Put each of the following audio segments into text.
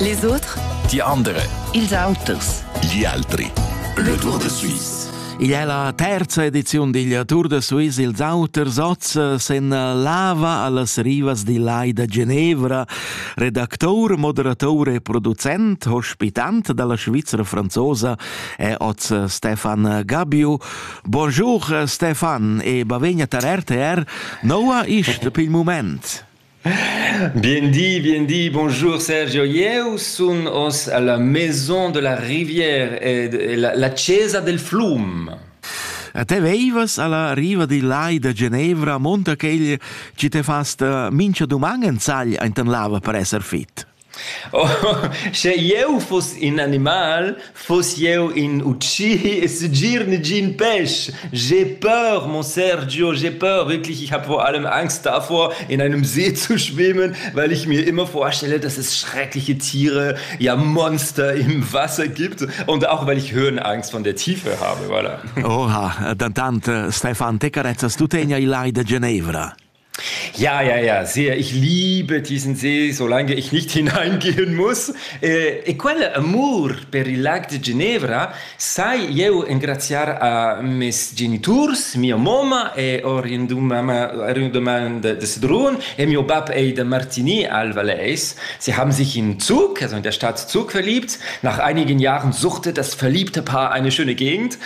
Les autres Die andere. Ils auters. Gli altri. Le Tour de Suisse. Igl è la terza edizione della Tour de Suisse. Ils auters oz se lava allas rivas di Lai da Genevra. Redaktor, moderator e producent, ospitant dalla Svizzera franzosa è oz Stefan Gabio. Bonjour Stefan e bavegna tar RTR. Noua ist pil moment? Bien dit, bien dit, bonjour Sergio. Eu sun hoz alla Maison de la Rivière e la, la Chesa del Flum. A te veivas alla riva di lai da Genevra, monta quegl chi te fast eh, mincha duman en sagl enten lava per esser fit. Oh, sche jeu fuss in animal, fuss jeu in utschi e segir negin pèsch. J'ai peur, mon Sergio, j'ai peur. Wirklich, ich habe vor allem Angst davor, in einem See zu schwimmen, weil ich mir immer vorstelle, dass es schreckliche Tiere, ja Monster im Wasser gibt und auch weil ich Höhenangst von der Tiefe habe, voilà. Oha, dantant, Stefan, te carezzas, tu tegna il lai de Genevra. Ja, ja, ja, sehr. Ich liebe diesen See, solange ich nicht hineingehen muss. E, e quel amur per il lac de Ginevra sai eu engraziar a mes geniturs, mia moma e Orientumama de, de Sedrun e mio bab ei de Martigny al Valais. Sie haben sich in Zug, also in der Stadt Zug verliebt. Nach einigen Jahren suchte das verliebte Paar eine schöne Gegend.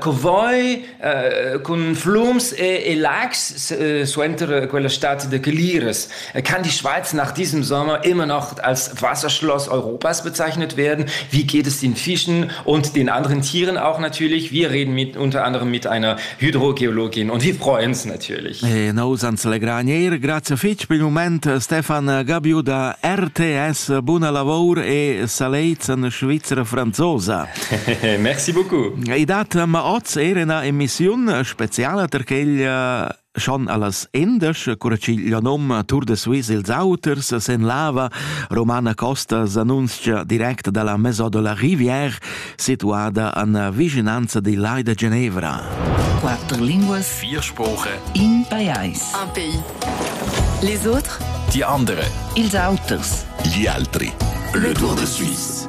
Covoi cun flums e, e lags suenter quella stad de Caliras kann die Schweiz nach diesem Sommer immer noch als Wasserschloss Europas bezeichnet werden. Wie geht es den Fischen und den anderen Tieren auch natürlich? Wir reden mit, unter anderem mit einer Hydrogeologin und wir freuen uns natürlich. E nous ans legranier. Grazie fitch per il moment Stefan Gabiu da RTS. Buona lavoro e saleizen Schweizer Franzosa. Merci beaucoup. I dat ma oz er ina emissiun speziala per quella schon allas endas, cura ch'igl nom Tour de Suisse ils auters sen lava Romana Costas annunzia direct dalla Maison de la Rivière situada an vicinanza di Lai de Genevra. Quattro linguas, vier sprache, in pajais, un pays. Les autres, die andere, ils auters, gli altri. Le Tour de Suisse.